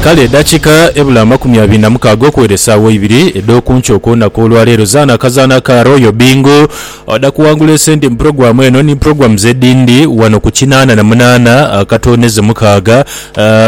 Kale edakika ebula amakumi abiri na mukaaga okuwera esaawa eibiri edhokunkyo okwonaku olwa leero zaana akazaana aka Royal Bingo oda kuwangula esente mu program eno ni programs edindi wano ku kinaana na munaana akatooneze mukaaga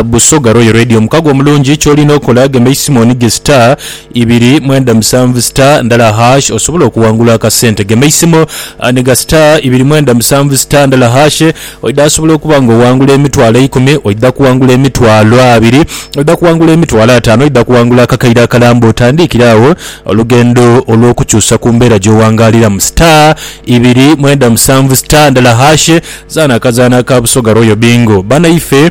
Busoga Royal Radio. Omukago omulungi kyolina okola gema eisimu onige star ibiri mwenda musanvu star ndala hash osobole okuwangula akasente gema eisimu niga star ibiri mwenda musanvu star ndala hash Oidha kusobola okuba nga oghangula emitwalo eikumi, oidha kughangula emitwalo abiri, oidha kughangula emitwalo ataanu, oidha kughangula akakaire akalamba otandiikire agho olugendo olw'okukyusa ku mbeera gy'oghangaaliramu. Star ibiri mwenda musanvu star ndala hash, zaana akazaanho aka Busoga Royal Bingo. Banaife.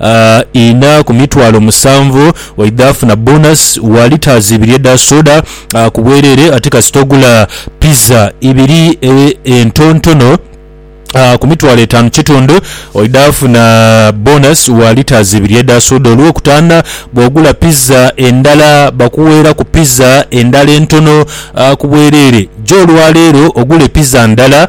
A Inha ku mitwalo musanvu oidha afuna bonus wa litres ibiri edha soda ku bwerere ate kasita ogula pizza ibiri entontono A Ku mitwalo etaanu kitundu oidha afuna bonus wa litres ibiri edha soda olwokutaana bwogula pizza endala bakuweeraku pizza endala entono ku bwerere. Gya olwaleero ogule pizza ndala.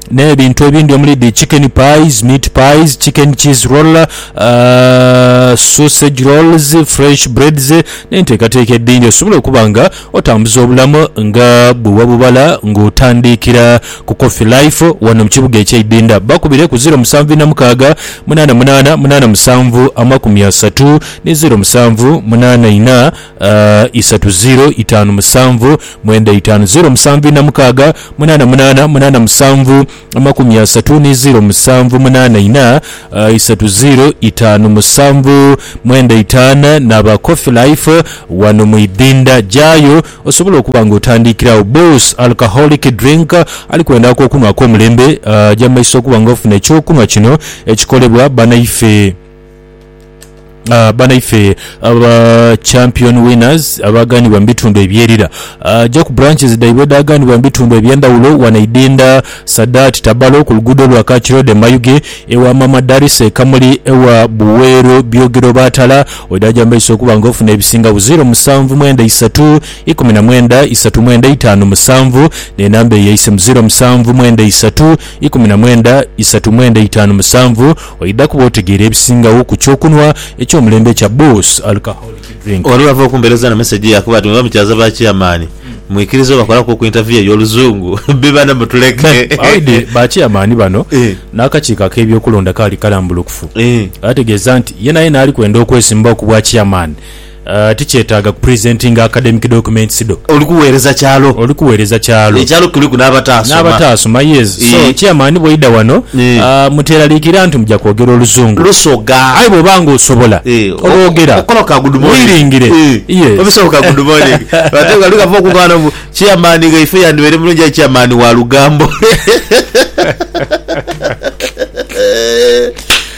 n'ebintu ebindi omuli dhi chicken pies, meat pies, chicken cheese roller, uh, sausage rolls, fresh breads n'enteekateeka edhindi osobola okuba nga otambuza obulamu nga bwe wabubala ng'otandiikira ku Coffee Life wano mu kibuga eky'e Idinda. Bakubire ku zeero musanvu ina mukaaga munaana munaana munaana musanvu amakumi asatu ni zeero musanvu munaana ina isatu ziiro itaanu musanvu mwenda itaanu ziiro musanvu ina mukaaga munaana munaana munaana musanvu amakumi asatu ni ziiro musanvu munaana ina isatu ziiro itaanu musanvu mwenda itaanu n'aba Coffee Life wano mu idhinda. Gyayo osobole okuba nga otandiikira agho. Boss Alcoholic Drink ali kwenda akokunhwa ak'omulembe, gya mu maiso okuba nga ofuna eky'okunhwa kino ekikolebwa banaife. Ah, banaife aba champion winners abaaganibwa mu bitundu ebyerira ah, ja ku branches dhaibwe edhaaganibwa mu bitundu eby'endhawulo wano Idinda, Sadaati, Tabalo, ku luguudo lwa Kach Road e Mayuge, ewa Maama Darisa e Kamuli, ewa Buweero Byogero Baatala, oidhaaja mu maiso okuba nga ofuna ebisinga bu ziro musanvu mwenda isatu ikumi na mwenda isatu mwenda itaanu musanvu n'enamba eyo eise mu ziro musanvu mwenda isatu ikumi na mwenda isatu mwenda itaanu musanvu. Oidha kuba otegeera ebisingagho ku kyokunhwa eky'omulembe ekya Boss Alcoholic Drink. Olwo bava okumpeereza na mesegi yaakuba ati, Mwebamukyaza ba Chairman, mwikiriza obakolaku ku interview ey'oluzungu? Bbi bano mutuleke. Bawaidhe ba Chairman bano n'akakiiko ak'ebyokulonda kaali kalambulukufu. Baategeeza nti yenayena ali kwenda okwesimbawo ku bwa Chairman, Tikyetaaga ku presentinga academic documents dho. Oli kuweereza kyalo. Oli kuweereza kyalo. Ekyalo kuliku n'abataasoma. N'abataasoma, yes. So, Chairman bw'oidha wano, muteeraliikirira nti muja kwogera Oluzungu. Lusoga. Aye bw'oba nga osobola, olwogera. Okola ka good morning. Wiringire. Yes. Obisobola ka good morning. Ate nga lugava okuva ghano mbu, Chairman ghaife yandibaire mulungi aye Chairman wa lugambo.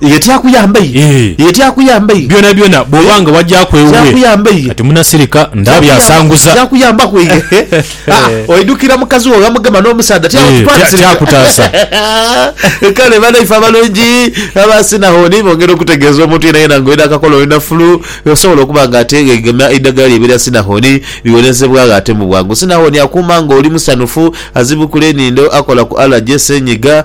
Ye tyakuyamba iye. Ye tyakuyamba iye. Byonabyona bw'oba nga wagyaku ewuwe, kati munasirika nda byasanguza. Tyakuyambaku iye. Haa, oidhukira mukazi wo ghamugema n'omusaadha tyakutwalisirika. Tyakutaasa. Kale banaife abalungi aba Sinahoni bongera okutegeeza omuntu yenayena nga oidha akakola oli na fulu, osobola okuba nga ateegegema eidhagala liibe lya Sinahoni liwonezebwagho ate mu bwangu. Sinahoni akuuma nga oli musanhufu, azibukula enindo, akola ku alaje, senyiga,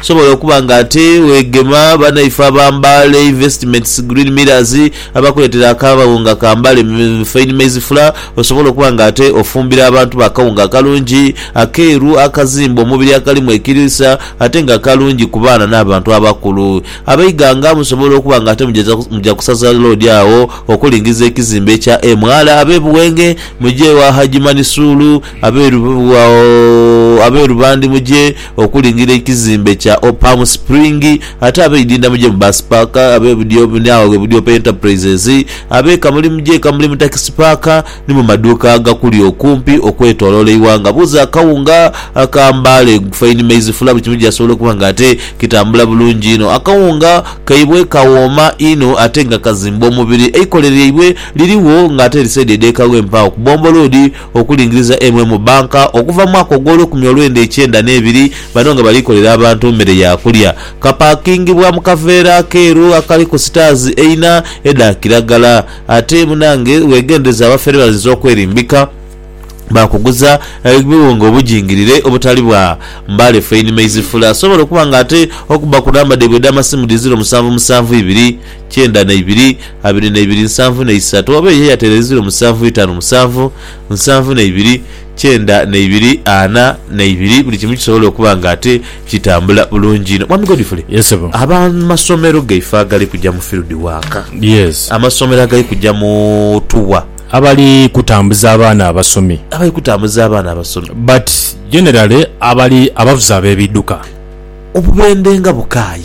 Osobola okuba nga ate weegema banaife aba Mbale Investments Green Millers abakuleetera akawunga ka Mbale Fine Maize Flour. Osobola okuba nga ate ofumbira abantu bo akawunga akalungi, akeeru, akazimba omubiri akalimu ekiriisa ate nga kalungi ku baana n'abantu abakulu. Abeighanga musobola okuba nga ate muja ku saza loodi agho okulingiza ekizimbe ekya MR ab'e Buwenge muje ewa Hajji Manisuulu, ab'e Rubandi muje. Okulingirira ekizimbe kya Palm Spring, ate abeidinda muje mu Bus Park, abebudyo ni agho ghe budyo pe Enterprises, abeeka muli muje eka muli mu Taxi Park ni mu maduuka agakuli okumpi okwetoloola eighanga. Buuza akawunga aka Mbale Fine Maize Flour buli kimu gyasobola okuba nga ate kitambula bulungi inho. Akawunga kaibwe kawooma inho ate nga kazimba omubiri. Eikole lyaibwe lirigho nga ate lisaidi edh'ekagho empaagho ku Bombo Road. okulingiriza eimwe mu banka okuva mu mwaka ogw'olukumi olwenda ekyenda n'ebiri, bano nga bali kolera abantu mmere ya kulya. Kapakingibwa mu kaveera akeeru akaliku sitaazi eina edha kiragala. Ate munange wegendereze abafere bayinza okwerimbika baakuguza ebiwunga obujingirire obutali bwa Mbale Fine Maize Flour. Sobola okuba nga ate okubba ku namba dhaibwe edh'amasimu dhiziro musanvu musanvu ibiri. kyenda na ibiri, abiri na ibiri nsanvu na isatu, oba eyo eyatereizirwe musanvu itanu musanvu, nsanvu na ibiri, kyenda na ibiri, ana na ibiri, buli kimu kisobole okuba nga ate kitambula bulungi inho. Mwami Godfrey, Yes ssebo. ab'amasomero gaife agali kuja mu field work, Yes. amasomero agali kuja mu tour, Abali kutambuza abaana abasomi abali kutambuza abaana abasomi, but generally abali abavuzi ab'ebidduka. obubendhe nga bukaayi.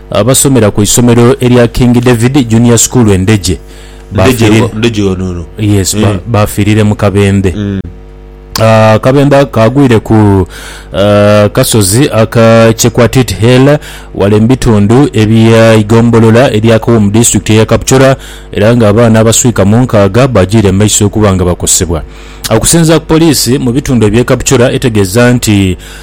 Abasomera ku isomero erya King David Junior School e Ndejje baafiirire mu kabembe. Akabembe ako kaagwire ku kasozi aka Chekwatit Hill ghale mu bitundu ebya eigombolola erya Kowo mu disitulikiti eya Kapchorwa era nga abaana abaswika mu nkaaga baagiire mu maiso okuba nga bakosebwa. Okusinzira ku poliisi mu bitundu ebye Kapchorwa etegeeza nti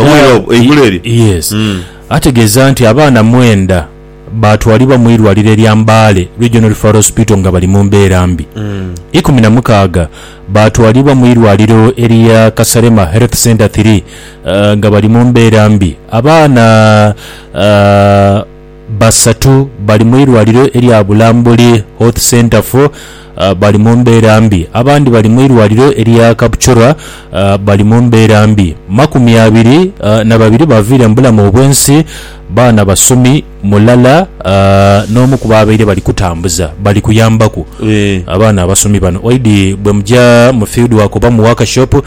Obwire obwo, eigulu eryo? Yes. Mm. Ategeeza nti abaana mwenda baatwalibwa mu irwaliro erya Mbale Regional Referral Hospital nga bali mu mbeera mbi. Ikumi na mukaaga baatwalibwa mu irwaliro erya Kasalema Health Centre Three nga bali mu mbeera mbi. Abaana ah, Basatu bali mu irwaliro erya Bulambuli Hoth Centre fo bali mu mbeera mbi. Abandi bali mu irwaliro erya Kapchorwa bali mu mbeera mbi. Makumi abiri na babiri baviire mu bulamu obwensi, baana basomi mulala n'omu ku baabaire bali kutambuza bali kuyambaku abaana abasomi bano. Oidhi bwemuja mu field work oba mu workshop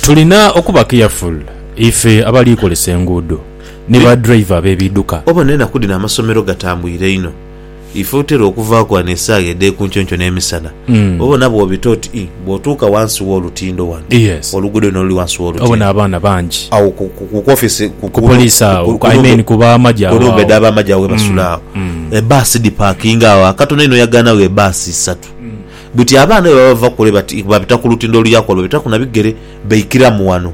Tulina okuba careful ife abali kolesa enguudo ni ba driver be biduka. Obona enaku dhino amasomero gatambuire inho. Ife otera okuvaaku ghano esaaha edhekunkyonky nemisana obona bwobita oti ii bwotuuka wansi wolutindo wano oluguudo luno luli wansi wolutindo agho ku office kunumba edha bamagye agho ghebasula agho ebaasi dhipakinga agho akatono inho oyagaanagho ebaasi isatu. Buti abaana bwe baba bava kule bati babita ku lutindo oluya kule, babitaku na bigere baikiramu wano.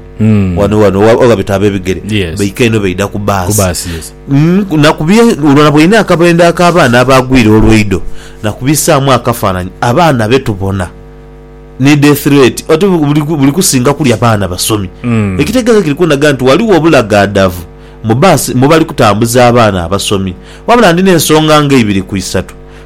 Wano wano we babita ab'ebigere Yes. baika eno baidha ku Ku baasi. baasi, yes. Mm, na ku bye olwo na bw'olina akabendo ak'abaana abaagwire olweido na kubisaamu akafaananyi abaana be tubona ni death rate oti bu- buli ku- buli kusinga kulya baana basomi. Mm. Ekitegeeza kiri kundaga nti waliwo obulagaadavu mu baasi mwe bali kutambuza abaana abasomi. Wabula ndina ensonga nga ibiri ku isatu.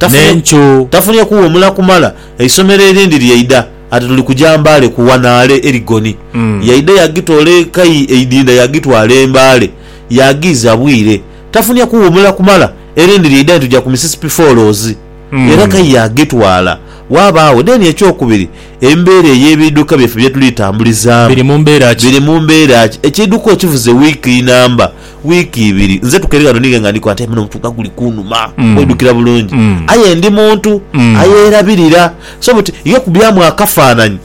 n'encu. Tafunye kuwumula kumala, eisomero erindi lyaidha ati tuli kuja Mbale ku wanaale Erigoni. Yaidha yagitoola ekai eidinda yagitwala e Mbale, yagiiza bwire. Tafunye kuwumula kumala, erindi lyaidha ni tuja ku Mississippi Falls, era kai yagitwala. Waabaawo deni ekyokubiri, embeera ey'ebiidhuka byaffe bye tuli tambulizaamu. Biri mu mbeera ki? Biri mu mbeera ki? Ekiidhuka okivuze wiiki inamba. Wiiki ibiri nze tukere ghano ninge nga ndikola nti aye munho omutwe nga guli kunhuma kwidhukira bulungi aye ndi muntu ayerabirira so buti ye okubyamu akafanhanhi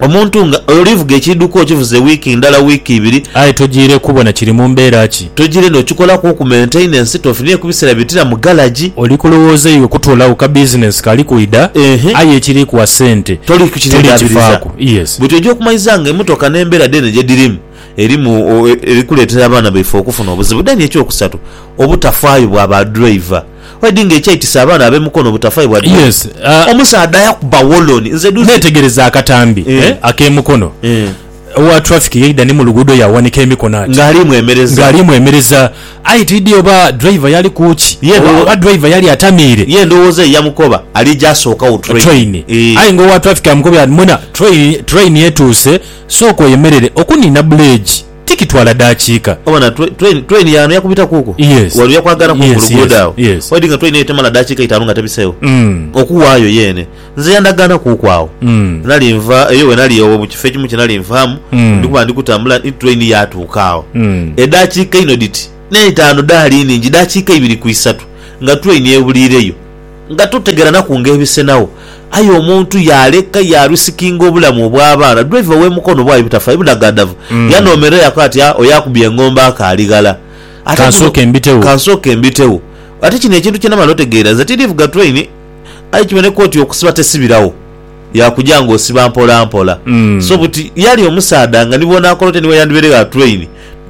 omuntu nga olivuga ekiidhuka okivuze wiiki ndhala, wiiki ibiri. Aye tojiire kubona kiri mu mbeera ki. Tojiire n'okikolaku okumenteina ensitofu ni ekubisera bitira mu galagi. Oli kulowooza iwe kutoolagho ka bizinensi kali kwidha aye ekiri kuwa sente toli kukifaaku. Buti oja okumaiza nga emotoka n'embeera dheene gye dhirimu. erimu eri kuleetera abaana baife okufuna obuzibu. Then eky'okusatu, obutafaayo bwa ba driver. Already nga ekyaitisa abaana ab'e Mukono obutafaayo bwa driver. Yes, ah. Omusaadha yakuba woloni. Nze duuzi. Neetegereza akatambi, Eh. eh, ak'e Mukono. Eh. Owa traffic yaidha ni mu luguudo yaawanika emikono ati. Nga aliimu emereza. Nga aliimu emereza. Aye tiidhi oba driver yali ku ki? Ye ndho. Oba driver yali atamiire? Ye endowooza ye yamukoba ali ja sookagho train. Train. Eh. Aye nga owa traffic amukobye ati, Mwena, train, train etuuse. Sooka oyemerere okuniina buleegi. Tikitwala daakiika. Obona train yaano yakubita kuukwo? Yes. Wali oja kwagala kuuku Yes, luguudo yes, agho? yes. Oidhi nga train eyo temala daakiika itaanu nga tebiseegho? Mm. Okuwaayo yeene. Nze yandagaana kuuku agho. Mm. Nali nva eyo we nali ewo mu kifo ekimu kye nali nvaamu, Mm. ndi kuba ndi kutambula ni train yaatuuka agho. Mm. Edaakiika inho dhiti n'eitaanu dhaali nnhingi, daakiika ibiri ku isatu nga train ebuliireyo. Nga totegeranaku ng'ebisenagho, aye omuntu yaaleka yaalwisikinga obulamu obw'abaana. Driver w'e Mukono bwali butafa ibunagandhavu, yanoomerera yaakoba ati, Ah, oyo akubye engombo akaali ghala. Ate guno, Ka nsooke mbitegho. Ate kino ekintu kye namala otegeera, nze tindivuga train, aye kiboneka oti okusiba tesibiragho. yakuja nga osiba mpola mpola so buti yali omusaadha nga ni bwonakora otya ni weyandibere gha train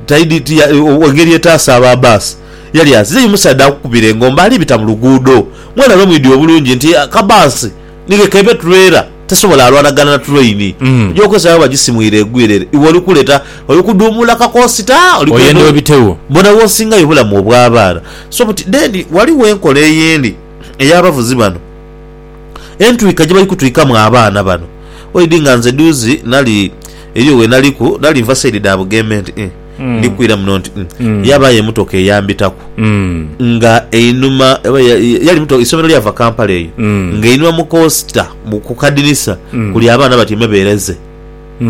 taidi ti engeri etaasa aba bus yali azize yo musaadha akukubire engombe ali bita mu luguudo mwena lwe mwidhi obulungi nti aka bus ni ke kebe trailer tesobola alwanagana na train oja okozesa bweba jisimwire egwire ere iwe oli kuleta oli kudhumula kakosita oli kwenda Oyenda obitewo. bona wosingayo obulamu obwa baana so buti then waliwo enkola eyindi eya bavuzi bano Entwika gyebali kutwikamu abaana bano oidi nga nze duuzi nali eriyo wenaliku nali nva side dha Bugembe nti ii ndi kwira muno nti ii yabayo emotoka eyambitaku nga einhuma eisomero lyava Kampala eyo nga einhuma mu kosita ku kadinisa kuli abaana batyaime bereze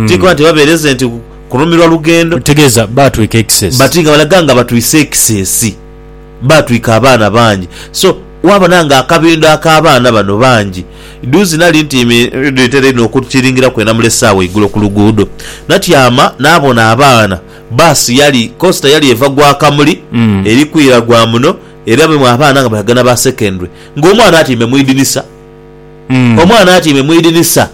ti kuba nti oba bereze nti kunumirwa lugendo bati nga balaga nga batwise ekisesi. baatwika abaana bangi so waabona nga akabindho ak'abaana bano bangi. Dhuuzi nali ntiimi dhitera inho okukiringiraku e Namulese agho eigulo ku luguudo. Natyama naabona abaana, bbaasi yali, kosita yali eva gwa Kamuli eri kwira gwa muno era mulimu abaana nga balaga na ba secondary ng'omwana atiimbe mu idinisa. Omwana atyaime mu idinisa.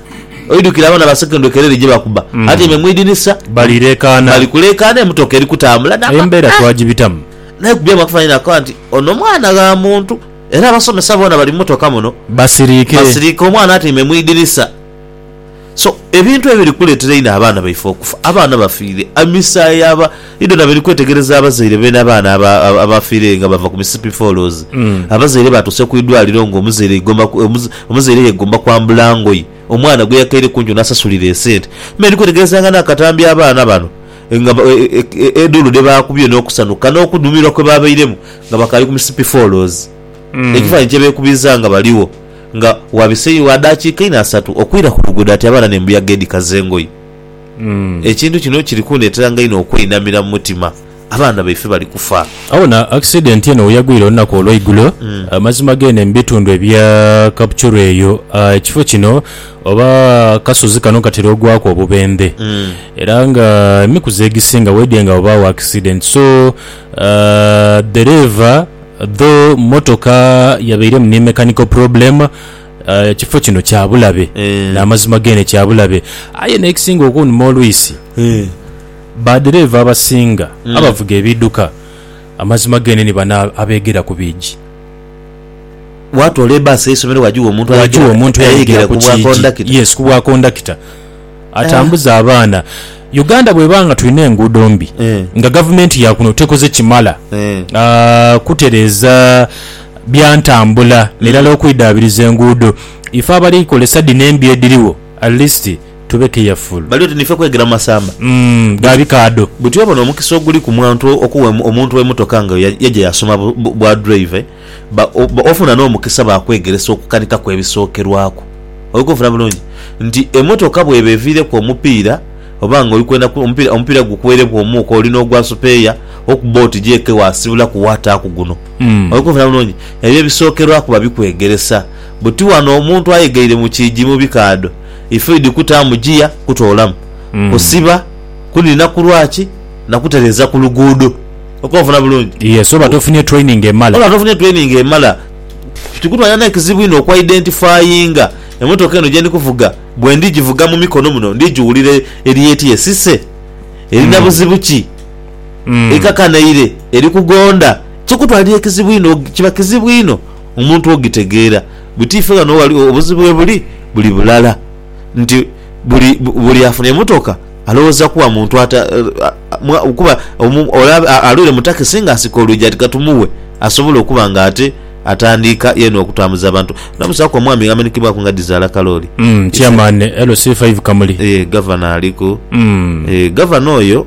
Oidhukira abaana ba secondary kerere gye bakuba? Atyaime mu idinisa. Bali leekaana. Bali kuleekaana, emotoka eri kutambula. Eyo embeera twagibitamu. Naye ku by'amakufa ni nakoba nti, Ono mwana gha muntu. Era abasomesa boona bali mu motoka muno. Basiriike. Basiriike. Omwana atyaime mu idinisa. So ebintu ebiri kuletera einho abaana baife okufa. Abaana bafiire emisayi aba idho na biri kwetegereza abazaire beene abaana abafiire nga bava ku misipi fooloozi. Abazaire baatuuse ku idwaliro nga omuzaire igomba omuzaire yegomba kwambula ngoye omwana gwe yakaire ku nkyo n'asasulira esente. Me ndi kwetegereza nga n'akatambi abaana bano nga edhuulu dhe baakubye n'okusanhuka n'okudhumirwa kwe baabairemu nga bakaali ku misipi fooloozi. Ekifaananyi kye beekubiiza nga baligho. nga wabiseeyo wa daakiika inho asatu okwira ku luguudo ati abaana n'embuyaga edhikaza engoye. Ekintu kino kiri kundeeteranga inho okweinamira mu mutima. Abaana baife bali kufa. Aye wona akisidenti eno we yagwira olunaku olw'eigulo, amazima geene mu bitundu ebya Kapchorwa eyo, ekifo kino oba akasozi kano katera ogwaku obubendhe era nga emikuzi egisinga weedhye nga wabaagho akisidenti so dhereeva, Though mmotoka yabairemu ni mechanical problem, ekifo kino kya bulabe Eh. n'amazima geene kya bulabe. Aye n'ekisinga okunuma olwisi, baddereeva abasinga abavuga ebiidhuka amazima geene ni bano abeeghera ku biigi. Waatoola ebbaasi y'eisomero waagigha omuntu Waagigha omuntu ayayegera ku bwakondakita. Yes, ku bwakondakita. atambuze abaana. Uganda bweba nga tulina enguudo mbi Eh. nga gavumenti yakuno tekoze kimala Eh. ah, kutereeza bya ntambula nairala okwidhaabiriza enguudo, ife abali kozesa dhino embi edhiriwo at least tube careful. Bali oti niife kwegera mu masamba. Mm, ga bikaadho. Buti oba n'omukisa oguli ku mwantu okuwa omu- omuntu emotoka nga ya- yaja yasoma bu- bu- bwa drive. Ba, ba, ofuna n'omukisa baakwegeresa okukanika kw'ebisookerwaku. Oli kunfuna bulungi? Nti, emotoka bw'eba eviireku omupiira, oba nga oli kwenda ku, omupiira, omupiira gukuweereku omuuka, oli n'ogwa supeeya, okubba oti gyeeke waasibulaku waataaku guno. Oli kunfuna bulungi? Ebyo ebisookerwaku babikwegeresa. Buti wano omuntu ayegeire mu kiigi mu bikaadho, ifuidi kutaamu giya, kutoolamu, kusiba, kuniina kulwaki, na kutereeza ku luguudo. okuba ofuna bulungi. Yes, oba tofunye training emala. Oba tofunye training emala. Kikutwalira n'ekizibu inho okwa identifyinga emotoka eno gyendi kuvuga. Bwe ndi givuga mu mikono muno ndi giwulira eri eti esise, erina buzibu ki, ekakanaire, eri kugonda. Kikutwalira ekizibu inho, kiba kizibu inho omuntu ogitegeera. But ife ghano obuzibu ghebuli, buli bulala nti. Buli buli afuna emotoka alowoza kuwa muntu ata kuba olaba alwire mu takisi nga asika olwigi ati katumuwe asobola okuba nga ate atandiika yena okutambuza abantu. Namusaku omwami amenhekebwaku nga dhizaala kalooli. Chairman LC5 Kamuli. Eeh Gavana aliku. Eeh Gavana oyo.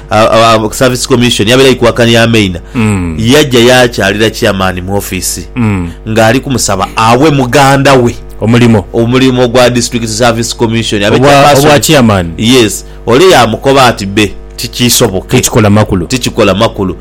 Service Commission yabeera Ikuakani ya Maina yajja yaakyalira Chairman mu offiisi ng'ali kumusaba awe muganda we omulimo omulimo gwa District Service Commission abe Obwa- Chairperson. obwa Chairman. Yes. Ole yaamukoba ati, Bbe, tikiisoboke. Tikikola makulu. Tikikola makulu.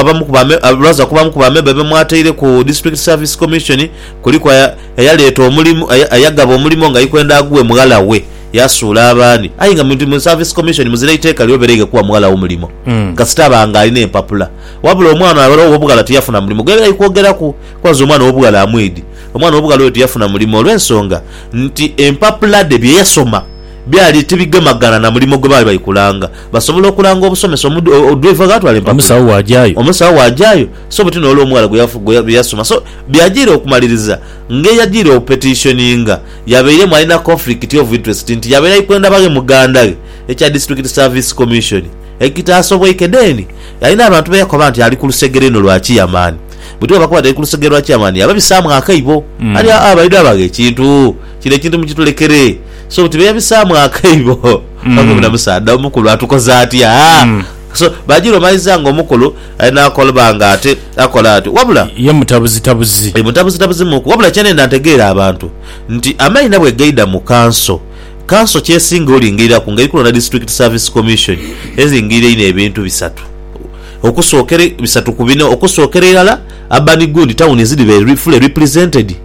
Abamu ku bamemba be mwataire ku District Service Commission kuliku eyaleeta omulimu, eyagaba omulimu nga aikwenda aguwe mughala we yasuula abandi aye nga mu Service Commission muzira iteeka lyobereighe kuwa mughala wo mulimo kasita aba nga alina empapula. Wabula omwana ow'obughala tiyafuna mulimo gwe bali kwogeraku kuba nze omwana ow'obughala amwidi. Omwana ow'obughala oyo tiyafuna mulimo olw'ensonga nti empapula dhe bye yasoma byali tibigemagana na mulimo gwe baali bali kulanga Basobola okulanga obusomesa omu driver ghatwala empapula. Omusawo wajayo. Omusawo wajayo so buti nole omughala gwe yasoma so byajire okumaliriza nga eyajire opetitioninga yabeiremu alina conflict of interest nti yabeera ikwendabaghe muganda ghe ekya District Service Commission ekitasobweike then alina abantu beyakoba nti ali kulusegere inho lwa chairman buti bwebakoba nti ali kulusegere lwa chairman yababisaamu akaibo ali aa baidabaghe ekintu kino ekintu mukitulekere. So buti bebisaamu akaibo Oba buna musaadha omukulu atukoze atya? So Bajirwa omaliza nga omukulu ali nakolba nga ate akola atyo wabula. Ye mutabuzitabuzi. Ye mutabuzitabuzi muku wabula kyenenda ntegeere abantu nti amaina bwegaidha mu kanso, kanso kyesinga olingiriraku nga eri kulonda District Service Commission eringirira einho ebintu bisatu okusokera bisatu ku bina okusokera irala urban gundi tawuni zidhi be fully represented.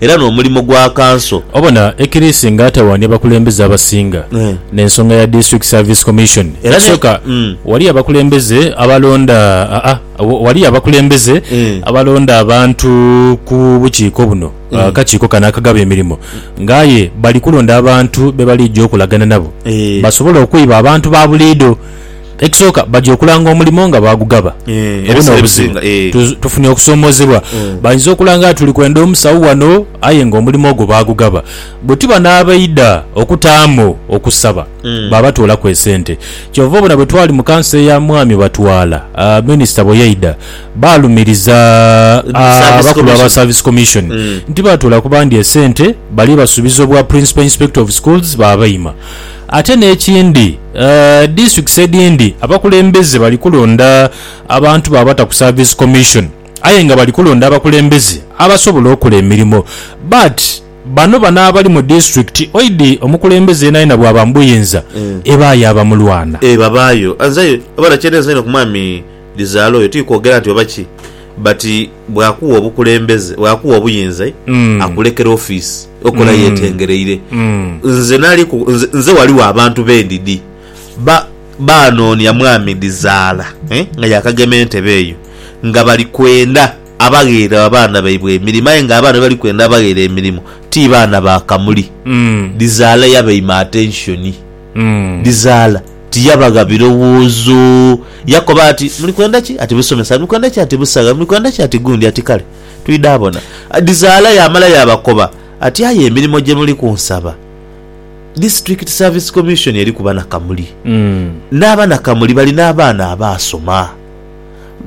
era n'omulimo gwa Kanso. Obona Ekirisi nga atawaanya abakulembeze abasinga n'ensonga ya District Service Commission. Ekisooka waliyo abakulembeze abalonda waliyo abakulembeze abalonda abantu ku bukiiko buno, akakiiko kano akagaba emirimo, nga aye bali kulonda abantu be balija okolagana nabo basobole okwiba abantu ba buliidho. Ekisooka, baja okulanga omulimo nga baagugaba. Ebi n'obuzibu. Tufunye okusoomoozebwa. Bayinza okulanga nti tuli kwenda omusawo wano aye ng'omulimo ogwo baagugaba. Bwe tuba n'abaidha okutaamu okusaba, baabatoolaku esente. Kyova obona bwe twali mu kanso eya Mwami Batwala, minisita bwe yaidha, baalumiriza abakulu aba Service Commission nti baatoolaku bandi esente bali basuubiza obwa Principal Inspector of Schools baabaima. Ate n'ekindi, disitulikisi edhindi abakulembeze bali kulonda abantu baabata ku Service Commission aye nga bali kulonda abakulembeze abasobola okola emirimo. But bano bano abali mu disitulikiti oidi omukulembeze yenayena bwaba mu buyinza ebaayo abamulwana. Eeh babaayo. Nze abadha kyenenze einho ku mwami Dhizaala oyo tikwogera nti oba ki. But bwakugha obukulembeze bwakugha obuyinza akulekera office okola yetengereire nze nali ku nze nze waliwo abantu bendidi ba banonia mwami dizaala eh nga yakagema entebe eyo nga bali kwenda abagheere abaana baibwe emirimo aye nga abaana bebali kwenda abagheere emirimo ti baana ba kamuli dizaala yabaima attention. dhizaala. Tiyabagha birowoozo. Yakoba ati, Muli kwenda ki? Ati, Busomesa. Muli kwenda ki? Ati, Busagha. Muli kwenda ki? Ati, Gundi. Ati, Kale, twidha bona. Dhizaala yaamala yaabakoba ati, Aye emirimo gye muli kunsaba, District Service Commission eri kuba na Kamuli. Naaba na Kamuli balina abaana abaasoma.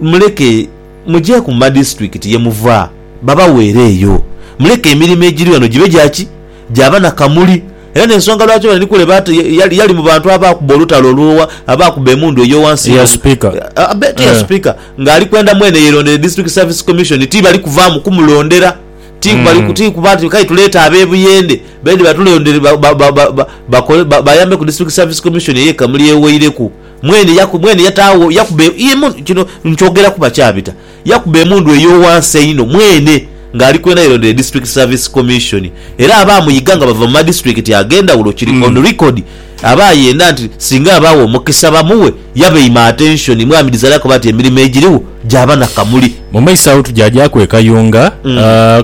Muleke mujeeku mu madisiturikiti ye muva, babaweereeyo. Muleke emirimo egiri ghano gibe gya ki? Gyaba na kamuli. Era n'ensonga lwaki bano ni kule baata, yali mu bantu abaakuba olutalo olw'owa, abaakuba emundu ey'owansi Eya Sipiika. Abe, ti ya Eh. Sipiika, ng'ali kwenda mwene yeerondere District Service Commission. Ti bali kuvaamu kumulondera. Ti ku bali ku, ti kuba nti k'aye tuleete ab'e Buyende baidhe batulondere, ba, ba, ba, ba, ba, bakole, ba, bayambe ku District Service Commission ey'e Kamuli ey'owaireku. Mwene yaku, mwene yataagho, yakuba e, emundu. Kino nkyogeraku bakyabita. Yakuba emundu ey'owansi einho mwene ng'ali kwenda yelondere District Service Commission era abaamuyiga nga bava mu madisiturikiti ag'endhawulo kiri on record aba ayenda nti singa abaagho omukisa bamughe yabaima attention. Mwami Desire akoba nti emirimo egirigho gyaba na kamuli. Mu maiso agho tujaagyaku e Kayunga.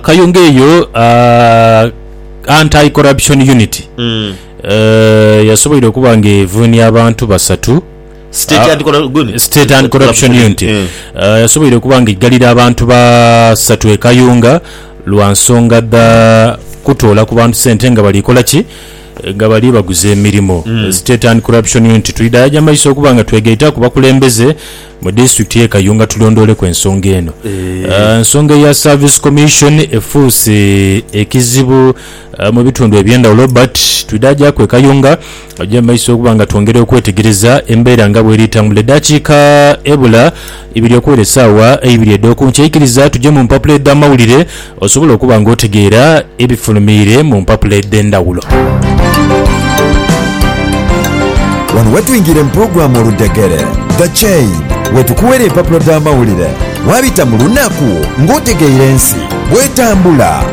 Kayunga eyo Anti Corruption Unit yasoboire okuba ng'evuunia abantu basatu. State Ah, Anti-Corru- good. State and Corruption Unit Eh. uh, yasoboire okuba nga eggalira abantu basatu e Kayunga lwa nsonga dha kutoola ku bantu sente nga bali kola ki Eh, nga bali baguza emirimu mm. State and Corruption Unit tulidaya gya maiso okuba nga twegaita ku bakulembeze mu disitulikiti y'e Kayunga tulondooleku ensonga eno Eh, ensonga eya Service Commission efuuse ekizibu Mu bitundu eby'endhawulo but twidhaajaku e Kayunga. Oja mu maiso okuba nga twongera okwetegereza embeera nga bw'eri tambula. Eddakiika ebula ibiri okuwera essaawa eibiri edh'oku nkya ikiriza tuje mu mpapula edh'amawulire osobole okuba nga otegeera ebifulumiire mu mpapula edh'endhawulo. Wano wetwingira mu pulogulaamu Oludhegere, The Chain, wetukuwera empapula dh'amawulire waabita mu lunaku ng'otegeire ensi bw'etambula.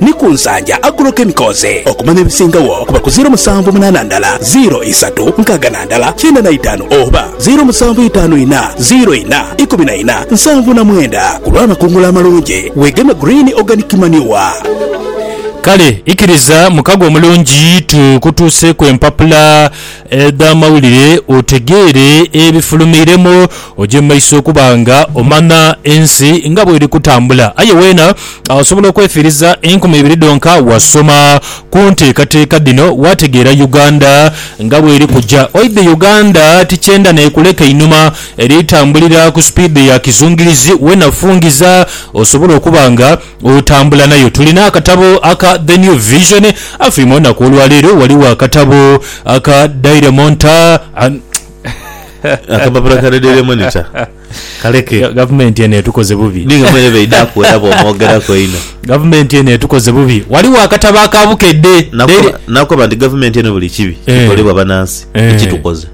ni ku nsaja Agrochemicals okumanya ebisingagho kuba ku ziiro musanvu munaana ndala ziiro isatu nkaaga na ndala kyenda na itaanu oba ziiro musanvu itaanu ina ziiro ina ikumi na ina nsanvu na mwenda ku lw'amakungula amalungi weegeme Green Organic Manure. Kale ikiriza mukago omulungi tukutuuseeku empapula Edha amawulire otegeere ebifulumiiremu, oje mu maiso okuba nga omanya ensi nga bw'eri kutambula. Aye weena osobola okwefiiriza enkumi ibiri dhonka wasoma ku nteekateeka dhino waategeera Uganda nga bw'eri kuja. Oidhi Uganda ti kyenda n'ekuleka einhuma, eri tambulira ku sipiidi ya kizungirizi. Weena fungiza osobole okuba nga. Otambula nayo. Tulina akatabo aka The New Vision. Afy, mu lunaku olwa leero ghaligho akatabo aka Daily Monter. Akapapula ka The Daily Monitor. Kaleke. Gavumenti eno etukoze bubi. Ni nga mwene b'eidhaku era bw'omwogeraku einho. Gavumenti eno etukoze bubi. Ghaligho akatabo aka Bukedde. Daily. Nakoba nti gavumenti eno buli kibi kikolebwa banansi ekitukoze.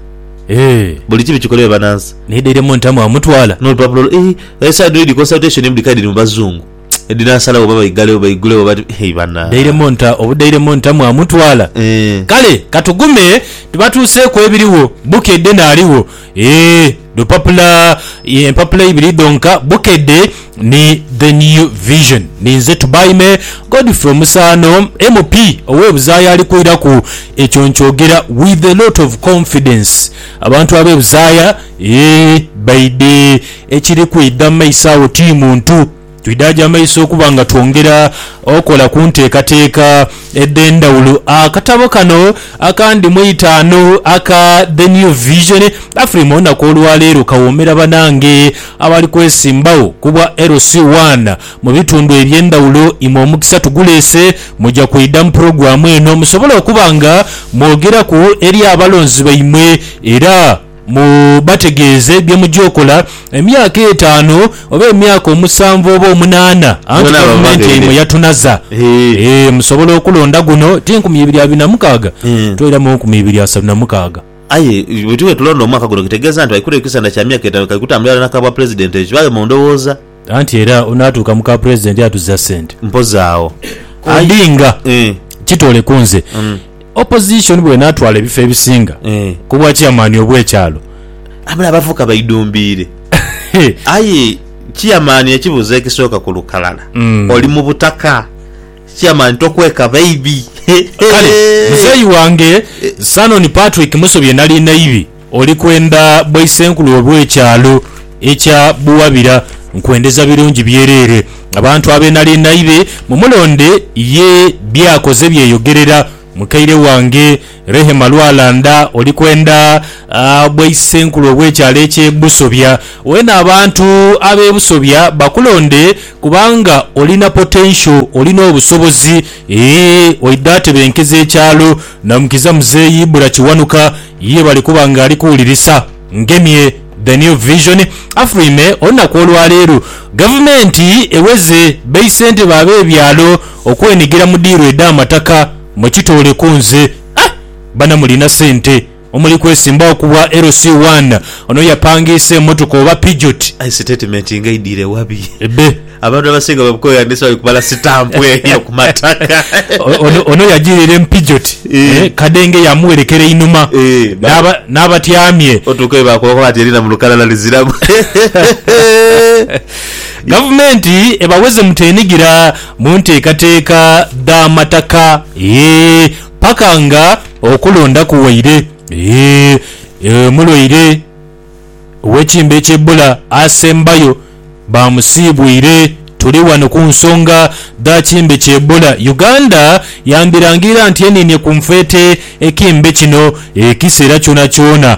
Eeh. Buli kibi kikolebwe banansi. Naye daily mo ntamu amutwala. Nolupapula olwo eeh e side read consultation emu dhikali dhiri mu bazungu edhinasalawo oba baigale oba baigule oba eeh bana. Daily mo nta obu daily mo ntamu amutwala. Eeh. Kale katugume tubatuuseeku ebiriwo bukedde naligho eeh lupapula empapula ibiri dhonka bukedde. ni The New Vision. Ninze Tubaime Godfrey Omusaano MP ow'e Buzaaya ali kwiraku ekyo nkyogera with a lot of confidence. Abantu ab'e Buzaaya eeh baidhe ekiri kwidha mu maiso agho ti muntu. Twidha gya maiso okuba nga twongera okola ku nteekateeka edh'endhawulo. Akatabo kano akandi mu itaanu aka The New Vision, Afrima olunaku olwaleero kawoomera banange. Abali kwesimbagho ku bwa LC One mu bitundu eby'endhawulo, imwe omukisa tuguleese. Muja kwidha mu pulogulaamu eno musobole okuba nga mwogeraku eri abalonzi baimwe era mubategeeze bye muja okola emyaka etaanu oba emyaka omusanvu oba omunaana anti Gavumenti yaimwe yatunaza. Musobola okulonda guno ti nkumi ibiri abiri na mukaaga, twairamu nkumi ibiri asatu na mukaaga. Aye bwe tuba tulonda omwaka guno kitegeeza nti baikuleyo ekisanda kya myaka etaanu kali kutambula irala na ka bwapulezidenti ekyo kibaaghe mu ndowooza. Anti era onaatuuka mu ka pulezidenti atuza ssente. Mpozi agho. Odinga, Aye. Kitoole ku nze. Opozisoni bw'enaatwala ebifo ebisinga ku bwa ciyamaani obw'ekyalo. Aye mule abavubuka baidumbiire. Aye ciyamaani ekibuuzo ekisooka ku lukalala, oli mu butaka? Chairman tokweka baibi Kale muzeeyi wange Sanon Patrick Musobye nali naibi oli kwenda bwaisenkulu obw'ekyalo ekya Buwabira nkwendeza birungi byereere abantu abe nali naibi mumulonde ye by'akoze byeyogerera mukaire wange Rehema Lwalanda oli kwenda bwaisenkulu obw'ekyalo eky'e Busobya. Weene abantu ab'e Busobya bakulonde kubanga olina potential, olina obusobozi eeh oidha atebenkeza ekyalo. Namukiza Mzeei Ibra Kiwanuka ye bali kuba nga ali kuwulirisa. Ngemye The New Vision, Afurime olunaku olwaleero gavumenti eweze beisentebe ab'ebyalo okwenigira mu diiru edh'amataka. Mukitooleko nze. Aah! Bana mulina sente omuli kwesimbawo ku bwa LC one. Ono yapangiisa emotoka oba pijot? Aye sitatimenti nga eidhire wabi? Ebbe. Abantu abasinga babukooya ndeese bali kubala sitampu eyo ku mataka. Ono ono yajiirire mu pijot Eh. eh, kadenge yamuwerekera einhuma Eh, ba- n'aba- n'abatyamye. Otuukayo baakubaku bati erina mu lukalala liziramu. Gavumenti ebaweze mutenigira. mu nteekateeka dh'amataka paka nga okulonda kuwaire. Omulwaire ow'ekimbe eky'e Bbula asembayo baamusiibwire. Tuli wano ku nsonga dha kimbe ky'e Bbula. Uganda yandhirangirira nti eniinye ku nfeete ekimbe kino ekiseera kyonakyona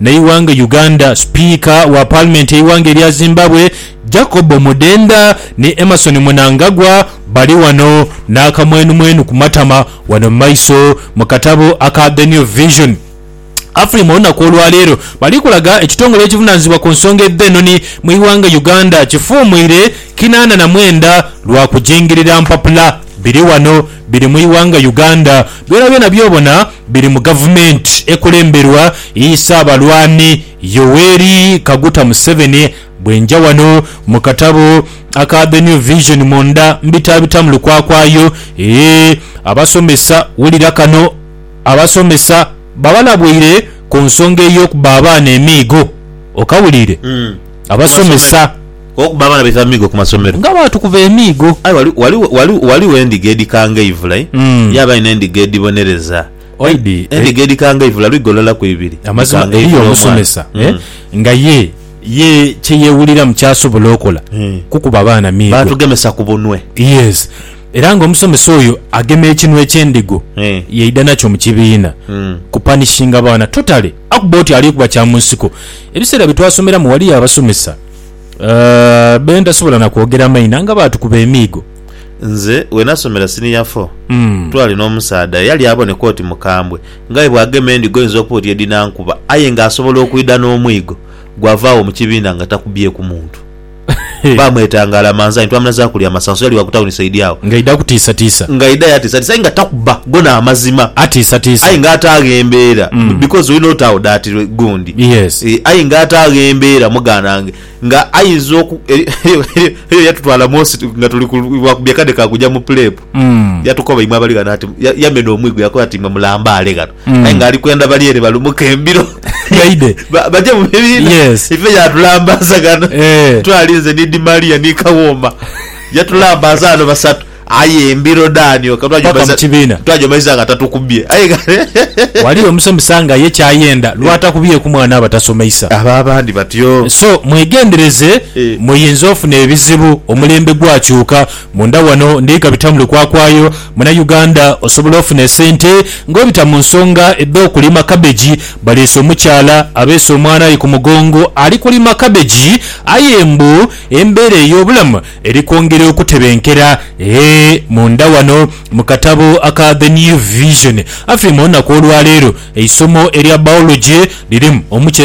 Neighanga Uganda, Sipiika wa Paalimenti y'eighanga erya Zimbabwe, Jacob Omudenda ni Emmerson Mnangagwa bali ghano n'akamwenumwenu ku matama ghano mu maiso mu katabo aka The New Vision. Afrima olunaku olwaleero bali kulaga ekitongole ekivunaanyizibwa ku nsonga edh'enoni mu ighanga Uganda kifuumuire kinaana na mwenda lwa kujingirira mpapula. Biri ghano. biri mu ighanga Uganda, byonabyona byobona biri mu gavumenti ekulemberwa yi Ssaabalwani Yoweri Kaguta Museveni, bwenja wano mu katabo aka The New Vision munda mbitabitamu lukwakwayo ee abasomesa wulira kano abasomesa babalabweire ku nsonga ey'okuba abaana emiigo okawulire abasomesa. Okuba abaana baita amiigo ku masomero. Nga bwatukuba emiigo. Aye wali, wali, wali, waliwo endiga edhikanga eivula, eh? Mm. Yabaayo n'endiga edhibonereza. Eh, Oidi, eh, endiga edhikanga eivula lwigo lulala ku ibiri. Amazima Dhikanga eriyo eivula omwana. omusomesa eh, Mm. nga ye, ye kye yeewuliramu ky'asobola okola Eh. kukuba baana miigo. Baatugemesa ku bunwe. Yes. Era nga omusomesa oyo agema ekinwe ky'endigo Eh. yaidha nakyo mu kibiina Mm. kupanishinga baana totally. Akuba oti ali kuba kya mu nsiko. Ebiseera bye twasomeramu waliyo abasomesa. Aah, Ben tasobola na kwogera maina nga baatukuba emiigo. Nze we nasomera siniya fo, twali n'omusaadha eyali aboneka oti mukambwe nga aye bw'agema endiga oyinza okuba oti edhinankuba aye ng'asobola okwidha n'omwigo gwava agho mu kibiina nga takubyeku muntu. Baamwetanga Alamanzani, twamunazaaku kulya masanso, yali wa ku tawuni saidi agho. Ng'aidha kutiisatiisa. Ng'aidha aye atiisatiisa aye nga takuba, gona amazima. Atiisatiisa. Aye nga ate aghembeera because olina oti agho dati gundi. Ee, aye nga ataagho embeera muganange nga aidha oku, eriyo yatutwala munsi nga tuli ku lwa kubya kade ka kuja mu pulepu. Yatukoba imwe abali ghano ati, yamena omwigo yakoba ati imwe mulambaale ghano. Aye nga ali kwenda bali ere balumuke embiro baje mu bibiina. Ife yaatulambaza ghano, twali nze ni Dimaria ni Kawooma. Yatulambaza ghano basatu. Aye embiro dhani oka Paka mu kibiina. twajomaiza nga tatukubye aye kale. Wali omusomesa nga ye kyayenda lwatakubyeku mwana abatasomeisa. Abo abandi batyo. So mwegendereze Eh. muyinza ofuna ebizibu omulembe gwakyuka munda wano ndika bita muli kwakwayo muna Uganda osobola ofuna esente nga obita munsonga edho kulima cabbage balese omukyala abese omwana aye kumugongo alikulima cabbage aye mbu embera eyobulamu Eri kwongera okutebenkera e munda wano mu katabo aka The New Vision, Afy, mu lunaku olwaleero eisomo erya Biology lirimu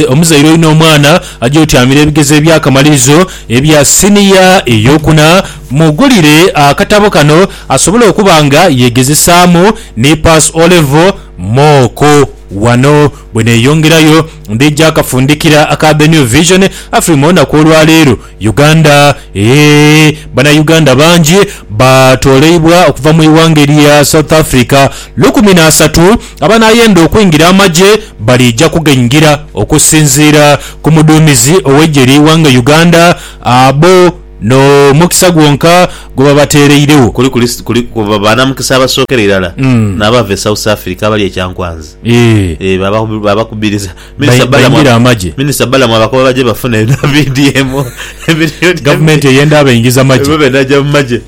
omuzaire oina omwana aja otyamira ebigezo ebyakamalirizo ebya siniya eyokuna. Mugulire akatabo kano asobole okuba nga yegezesaamu ni Pass O Level, Mock. Wano bweneyongerayo ndija kafundikira aka The New Vision, Afy, mu lunaku olwaleero Uganda eeh bana Uganda bangi ba toleibwa okuva mu ighanga elya South Africa lukumi na asatu abanayenda okwingira amagye balija kugaingira okusinziira ku muduumizi ow'eigye lye ighanga Uganda abo no mukisa gwonka gwe babatereiregho. Kuliku banamukisa abasookera irala n'abava e South Africa abali e Kyankwanzi eeh babakubiriza Minisita Balamu baingira amagye. Minisita Balamu abakoba bagye bafune na BDM emiliyoni Gavumenti eyenda abaingiza magye. Emirundi ebiri naja mu magye.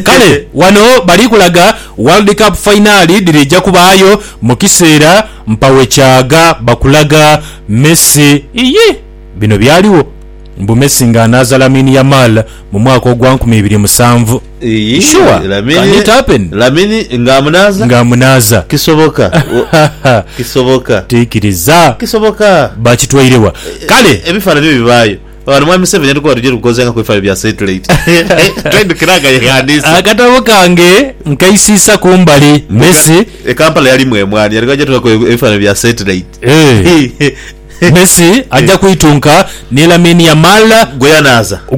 Kale wano bali kulaga World Cup fainaali dhirija kubaayo mu kiseera mpawo kyagha bakulaga Messi. Iyii! Bino byaligho. Mbu Messi nga anaaza Lamine Yamal mu mwaka ogwa nkumi ibiri musanvu. Iyii, Sure? Can it happen? Lamine, Lamine nga amunaaza? Nga amunaaza. Kisoboka, Haha. kisoboka, Tiikiriza. kisoboka. Bakitwaire wa? Kale. Ebifaananhi byo bibaayo. Ghano Mwami Museveni yatukoba tuja tukozenga ku bifaayo bya satellite. Twaidhukira nga yeghandiisa. Akatabo kange nkaisiisa ku mbali. Messi. E Kampala yalimu emwaani, yali aja tukoba ku ebifaananhi bya satellite. Eh. Messi aja kwitunka ni Lamine Yamal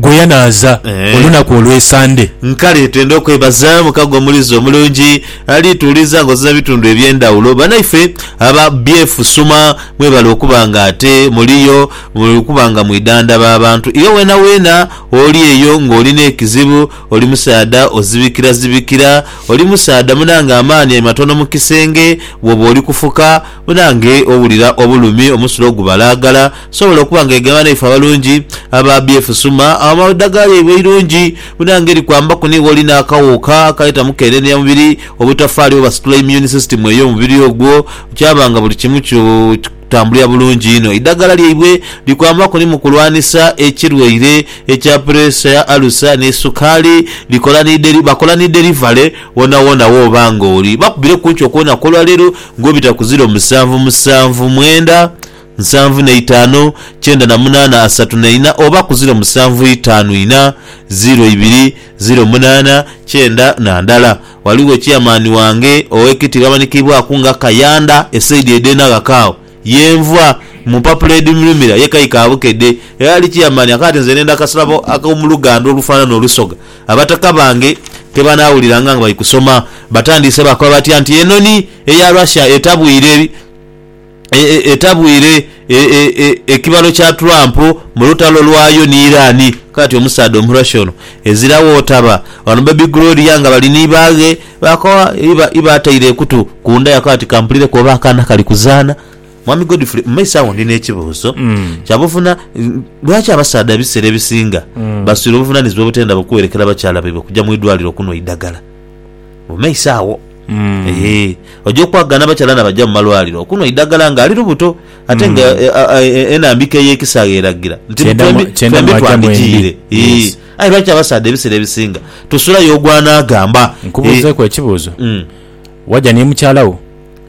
gwe yanaaza olunaku olwe Sande. Nkale twende okwebaza mukago omulizi omulungi ali tuwuliza nga ozira bitundu ebyendawulo. Banaife aba BF suma mwebale okuba nga ate muliyo okuba nga mwidandaba abantu. Iwe wena wena oli eyo nga olina ekizibu oli musaadha ozibikira zibikira oli musaadha munange amaani matono mukisenge woba oli kufuka. Munange owulira obulumi omusulo ogubalaagala, sobola okuba nga egema naife abalungi aba BF Suma awo edagala lyaibwe eirungi munange likwambaku ni woli n'akawuuka akaleeta mukenenia mubiri obutafaali oba situla immune system ey'omubiri ogwo kyaba nga buli kimu kikutambulira bulungi inho. Eidagala lyaibwe likwambaku ni mukulwanisa ekirwaire ekya pureesa, alusa ni sukaali. Likola ni deli, bakola ni delivery wonawona woba nga oli. Bakubire ku nkyo kwonaku olwaleero. Ng'obita ku ziro musanvu, musanvu, mwenda, nsanvu na itaanu, kyenda na munaana, asatu na ina, oba ku ziro musanvu, itaanu, ina, ziro, ibiri, ziro, munaana, kyenda, na ndala. Ghaligho chairman wange ow'ekitiibwa amanikiibwaku nga Kayanda e saidi edh'e Naghaka agho ye nva, mu mpapula edhi mulumira ye Kayi ka Bukedhe. Yali chairman akaati nze ne ndha akasalabo ak'omuluganda olufaanana olusoga. Abataka bange kebanaawuliranga nga bali kusoma, batandiise baakoba batya nti, Enhonhi eya Russia etabwire etabwire ekibalo kya Trump mu lutalo lwayo ni Iran. Kaati omusaadha Omurussia ono ezira w'otaba wano Baby Gloria nga bali ni baaghe baakoba iba iba ataire ekutu ku ndaya kaati kampulireku oba akaana kali kuzaana. Mwami Godfrey, mu maiso agho ndina ekibuuzo kya buvuna, lwaki abasaadha ebiseera ebisinga baswire obuvunanizibwa obutendha bukuwerekera bakyala baibwe kuja mu idwaliro kunhwa eidhagala? Mu maiso agho eeh oja okwagaana abakyala nabaja mu malwaliro okunhwa eidhagala nga ali lubuto ate nga enambika ey'ekisaghe eragira nti Kyenda mu- twembi kyenda twembi mwagya mwembi. twandigiire. Eeh, Yes. aye lwaki abasaadha ebiseera ebisinga tusulayo ogwanaagamba? Nkubuuzeeku ekibuuzo. Mm. Waja ni mukyala wo?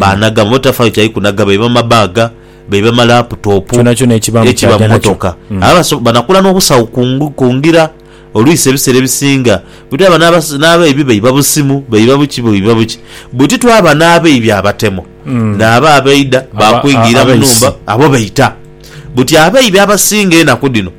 Baanaga mu motoka, tafaayo kyali kunaga, baiba mabaaga, baiba malaputopu, ekiba mu motoka. Abaso banakula n'obusawo ku ngira olwisi ebiseera ebisinga. Bwetwaba n'abaibi baiba busimu, baiba buki, baiba buki. Bwetitwaba n'abaibi abatemo, naabo abaidha baakwingiira mu nhumba, abo baita. Buti abaibi abasinga enaku dhino.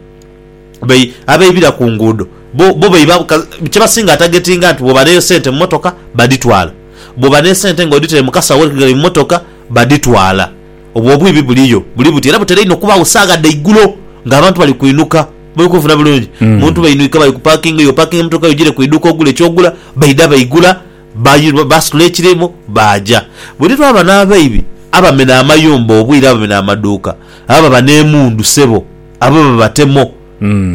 be abeibira ku nguudo bo bo beiba ka kye basinga atagetinga nti bw'oba n'esente mu mmotoka badhitwala, bw'oba n'esente ng'odhitaire mu kasawo akali mu mmotoka badhitwala. Obwo obwibi buliyo buli buti era butera inho okubaagho saagha dha igulo ng'abantu bali kwinuka. Muli kunfuna bulungi? Omuntu bainwika bali ku paakingi yo, opaakinga emmotoka yo ogiire ku iduuka ogule eky'ogula, baidha baigula ba baasitula ekirimu baaja. Buli lwaba n'abeibi abamena amayumba obwire abamena amaduuka, abo baba n'emundu sebo. abo babatemo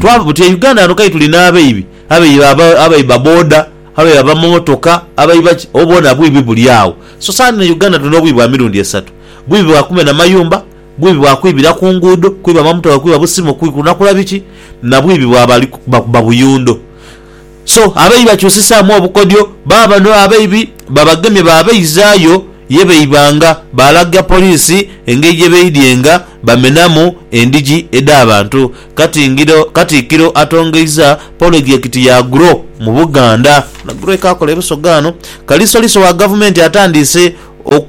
twava buti e Uganda ghano kale tuli n'abaibi abaiba abaiba boda abaiba abamamotoka abaiba ki obwo bwona bwibi buli agho so saani e Uganda tuli n'obwibi bwa mirundi esatu bwibi bwa kumena mayumba bwibi bwa kwibira ku nguudo kwiba amamotoka kwiba busimu kunakola biki na bwibi bwa bali kubba kubba buyundo. So abaibi bakyusisaamu obukodyo, baa bano abaibi babagemye baabaizaayo ye baibanga, baalaga poliisi engeri gye baidyenga bamenamu endhigi edh'abantu. Katingiro Katikkiro atongeiza polojekiti ya Grow mu Buganda. Ono Grow ekaakola e Busoga ano. Kalisoliso wa Gavumenti atandiise oku.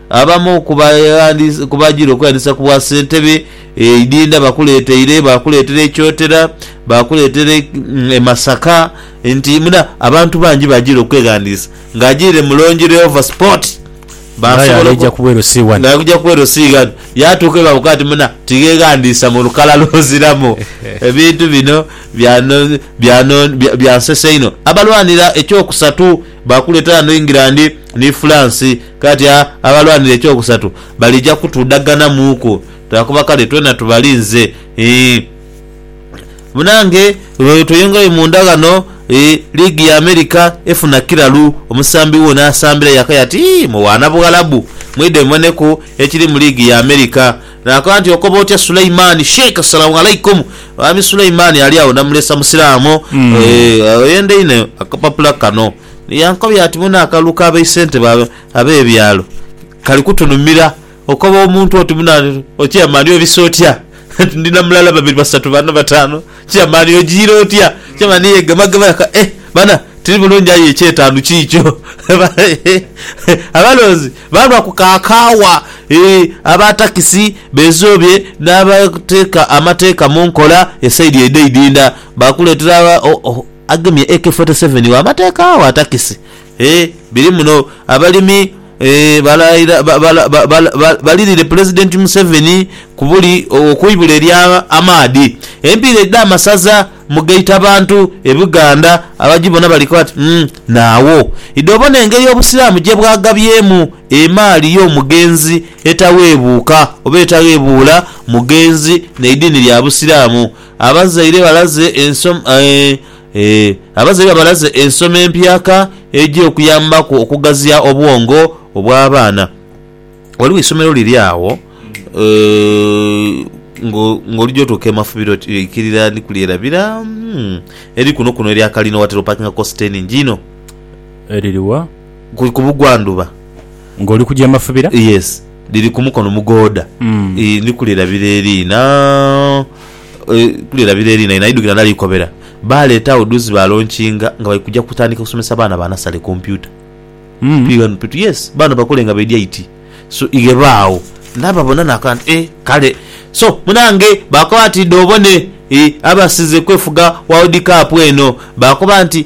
Abamu ku bajire okweyandisa ku bwasentebe e Idinda bakuleeteire, baakuleetera e Kyotera, baakuleetera e Masaka nti muna abantu bangi bajire okweghandiisa. Ng'ajiire mu Longi Leova Sport, Nga aye ali eja kubweru si ghano. Nga aja kubweru si ghano. Yaatuuka ghe baamukoba nti muna tigheghandiisa mu lukala lw'oziramu. Ebintu bino byansesa inho. Abalwanira eky'okusatu baakuleetera ghano England ni France Kati abalwanira eky'okusatu balija kutudhaganamuuku lwa kuba kale twena tubalinze. Ii, Munange lwe tweyongerayo munda ghano, ii, liigi ya Amerika efuna kiralu, omusambi wo n'asambira yakaya ati, Ii, mwe baana Bughalabu, mwidhe muboneku ekiri mu liigi ya Amerika. Naakoba nti, Okoba otya Suleimani? Sheikh, Assalamu Alaikum! Mwami Suleimani ali agho, ndamulesa Musiraamu. Ee, oyenda inho akapapula kano. Ni yankobya ati, Muno akalulu ka baisentebe ab'ebyalo kali kutunumira. Okoba omuntu oti muno ati, Okyama ani? Obise otya? Ati, Ndi na mulala, babiri, basatu, bana, batanu. Okyama ani? Ojiire otya? Okyama ani? Yeegemagema yeka. Eh! Bana, tiri bulungi aye eky'etaanu kiikyo. Abalonzi baalwa ku ka kaawa. Aba takisi beezoobye n'abateeka amateeka mu nkola esaidi edho eidhindha. Baakuleetera. agemye AK forty seven wa mateeka wa takisi eeh biri muno Abalimi eeh balirire Pulezidenti Museveni kubuli okwibula erya amaadhi Empiira edha masaza mugaita abantu e Buganda abagibona bali kooti umm naagho idho obona engeri Obusiraamu gyebwagabyemu emaali yomugenzi etaweebuuka oba etaghebuula mugenzi neidiini lya Busiraamu Abazaire balaze Abazaire balaze ensoma empyaka eja okuyambaku okugaziya obwongo obw'abaana. Ghaligho eisomero liri agho ng'olugya otuuka e Mafubiro oikirira ni ku lyerabira eri kunokuno erya kalina, watera opakingaku site eningi inho. Eriri wa? ku ku bugwandhuba. Nga oli kuja mafubira. Yes, liri ku mukono mugooda. Ii, ndi kulirabira eriina, e, kulirabira eriina inho. Aidhukira ndali kukobera. Baaleeta agho dhuuzi baalonkinga nga bali kuja kutandika kusomesa baana ba nasale kompyuta. Tuli ghano tuti, Yes, baano bakole nga baidhi aiti. So, ighe baagho. Ndaababona naakola nti, Ee, kale. So, munaange, baakoba bati, Idho obone, e, abasize kwefuga World Cup eno. Baakoba nti.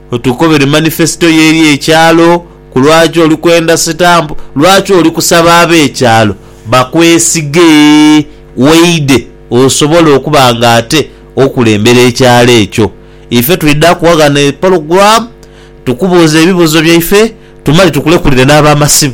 Otukobere manifesito yo eri ekyalo ku lwaki oli kwenda sitampu, lwaki oli kusaba ab'ekyalo bakwesige waide osobole okuba nga ate okulembera ekyalo ekyo. Ife twidha kuwa ghano epologulaamu tukubuuze ebibuuzo byaife tumale tukulekulire n'abamasimu.